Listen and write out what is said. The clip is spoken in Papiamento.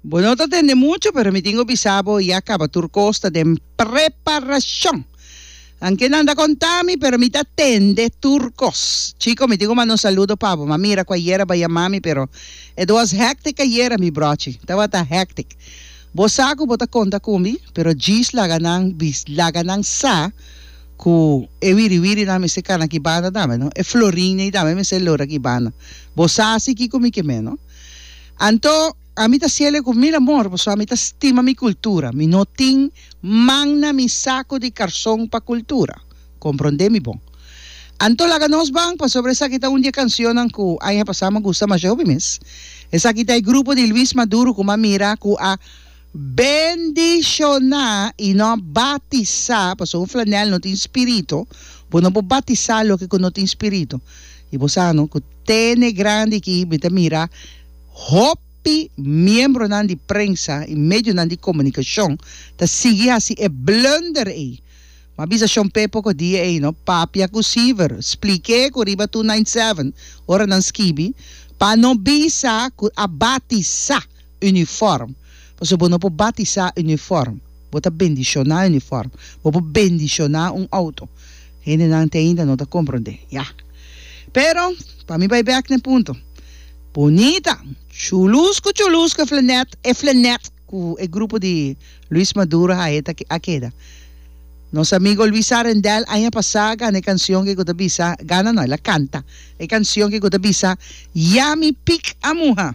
Bo no ta tende mucho, pero mi tingo bisa bo ya caba tur cos ta den preparacion. Nan ke nan ta conta mi, pero mi ta tende tur cos. Chico, mi tingo manda un saludo pa bo, ma mira cu ayer a baya mami, pero it was hectic ayera mi brochi, tabata hectic. Bo sa cu bo ta conta cu mi, pero djis laga nan bis, laga nan sa cu e wiri wiri nan mester cana aki banda tambe, no? E florin ei tambe mester lora aki banda. Bo sa si kico mi ke me, no? Anto, ami ta siele ku mil amor paso ami ta stima mi kultura, mi no tin man na mi sako di karson pa kultura. Komprondé mi bon. Anto laga nos ban pasobra esaki ta un di e kansionnan ku aña pasá m'agusta masha hopi mes. Esaki ta e grupo di Luis Maduro ku m'a mira ku a. Bendishoná i no batisá, pasobra un flanèl no tin spiritu, bo no por batisá loke ku no tin spiritu. I bo sa no ku tene grandi aki mi ta mira hopi miembronan di prensa i medionan di komunikashon ta sigui hasi e blunder ei. M'a bisa Shon Pepo ku dia ei no papia ku Siver, spliké ku riba Two Nine Seven ora nan skibi pa no bisa ku a batisá. Unifòrm. Pasobra bo no por batisá unifòrm. Bo ta bendishoná unifòrm. Bo por bendishoná un outo. Hendenan te ainda no ta komprondé. Ya. Pero, pa mi bai bèk den punto. Bunita, chulusku chulusku e flanèt, e flanèt ku e grupo di Luis Maduro hae ta a keda. Nos amigo Luis A. Rendel aña pasá a gana e kansion ke ku ta bisa, gana no, el a kanta e kansion ke ku ta bisa, Ya mi pik a muha.